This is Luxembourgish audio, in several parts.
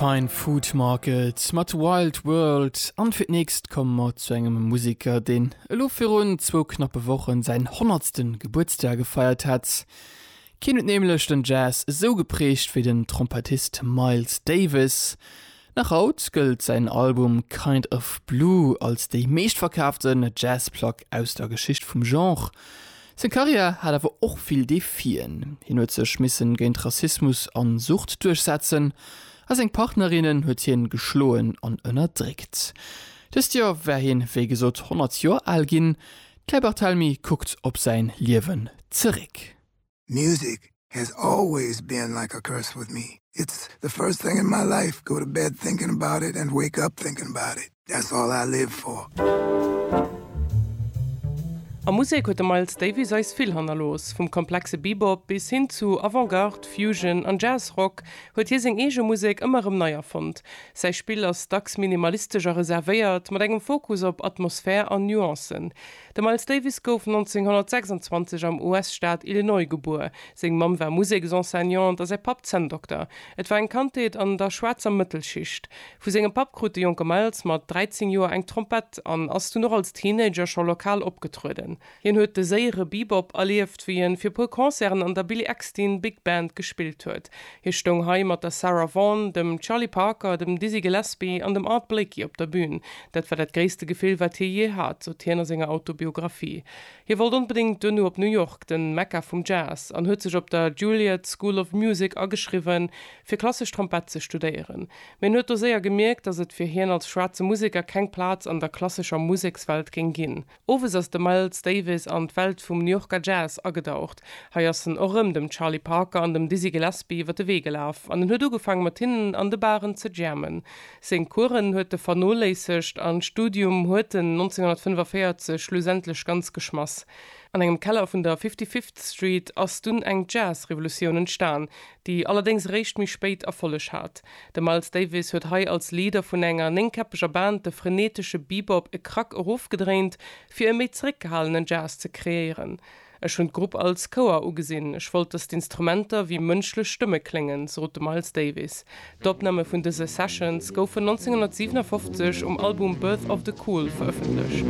Fine Food Market mat Wild World an fir d'nächst komme mer zu engem Museker, deen elo virun zwou knappe Wochen säin honnertsten Gebuertsdag gefeiert hätt. Keen huet nämlech den Jazz esou geprägt wéi den Trompettist Miles Davis. Nach haut gëllt säin Album Kind of Blue als déi meeschtverkaafte Jazzplack aus der Geschicht vum Genre. Seng Karriär hat awer och vill Defien. Hien huet sech misse géint Rassismus an Sucht duerchsetzen a seng Partnerinnen huet hien geschloen an ënnerdréckt. Dëst Joer war hien, wéi gesot, 100 Joer al ginn. D'Claire Barthelemy kuckt op säin Liewen zeréck. Music has always been like a curse with me. It's the first thing in my life, go to bed thinking about it and wake up thinking about it. That's all I live for. A Musek huet de Miles Davis eis vill hannerlooss. Vum komplexe Bebop bis hin zu Avant-Garde, Fusion an Jazz-Rock huet hie seng eege Musek ëmmer erëm nei erfonnt. Säi Spill ass dacks minimalistesch a reservéiert, mat engem Fokus op Atmosphär an Nuancen. De Miles Davis gouf 1926 am US-Staat Illinois gebuer. Seng Mamm war Museksenseignante a säi Papp Zänndokter. Et war eng Kandheet an der schwaarzer Mëttelschicht. Vu sengem Papp krut de jonke Miles mat 13 Joer eng Trompett an ass dunn och als Teenager scho lokal opgetrueden. Hien huet de séiere Bebop erlieft, wéi en fir e puer Concerten an der Billy Eckstine Big Band gespillt huet. Hie stoung hei mat der Sarah Vaughan, dem Charlie Parker, dem Dizzy Gillespie an dem Art Blakey op der Bün. Dat war dat gréisste Gefill, wat hie jee hat, sot hien a senger Autobiographie. Hie wollt onbedéngt duerno op New York, den Mekka vum Jazz, an huet sech op der Juilliard School of Music ageschriwwen, fir klassesch Trompett ze studéieren. Mee en huet do séier gemierkt, datt et fir hien als schwaarze Museker keng Plaz an der klassescher Musekswelt géing ginn. Owes ass de Miles Davis an d'Welt vum New Yorker Jazz agedaucht. Hei ass en och rëm dem Charlie Parker an dem Dizzy Gillespie iwwer de Wee gelaf an en huet ugefaang mat hinnen an de Baren ze jammen. Seng Coursen huet e vernoléissegt an d'Studium huet en 1945 schlussendlech ganz geschmass. An engem Keller vun der Fifty Fifth Street ass dunn eng Jazz-Revolutioun entstan, déi allerdéngs eréischt méi spéit Erfolleg hat. De Miles Davis huet hei als Leader vun enger néngkäppeger Band de frenetesche Bebop e Krack erofgedréint, fir e méi zeréckgehalenen Jazz ze kreéieren. Ech hunn d'Grupp als Chouer ugesinn, ech wollt, datt d'Instrumenter wéi mënschlech Stëmme kléngen, sot de Miles Davis. D'Opname vun dëse Sessions goufen 1957 um Album Birth of the Cool verëffentlecht.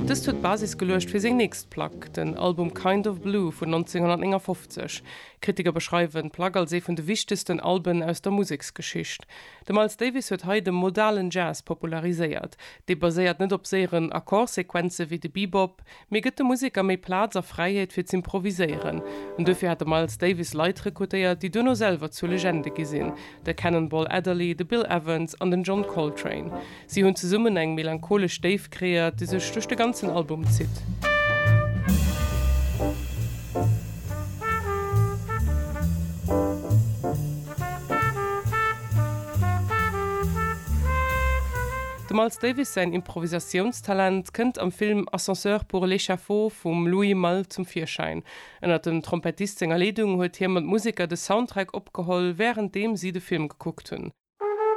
Dëst huet d'Basis geluecht fir seng nächst Plack, den Album Kind of Blue vun 1959. Kritiker beschreiwen d'Plack als ee vun de wichtegsten Alben aus der Museksgeschicht. De Miles Davis huet hei de modalen Jazz populariséiert. Dee baséiert net op séieren Akkordsequenze wéi de Bebop, mee gëtt dem Museker méi Plaz a Fräiheet fir z'improvisieren. An duerfir hat de Miles Davis Leit rekrutéiert, déi duerno selwer zu Legende gi sinn, de Cannonball Adderley, de Bill Evans an den John Coltrane. Si hunn zesummen eng melancholesch Déift kreéiert, déi sech duerch de ganzen Album zitt. Dem Miles Davis säin Improvisatiounstalent kënnt am Film Ascenseur pour l'échafaud vum Louis Malle zum Virschäin. Ënnert dem Trompettist senger Leedung huet hie mat Museker de Soundtrack opgeholl, wärenddeem si de Film gekuckt hunn.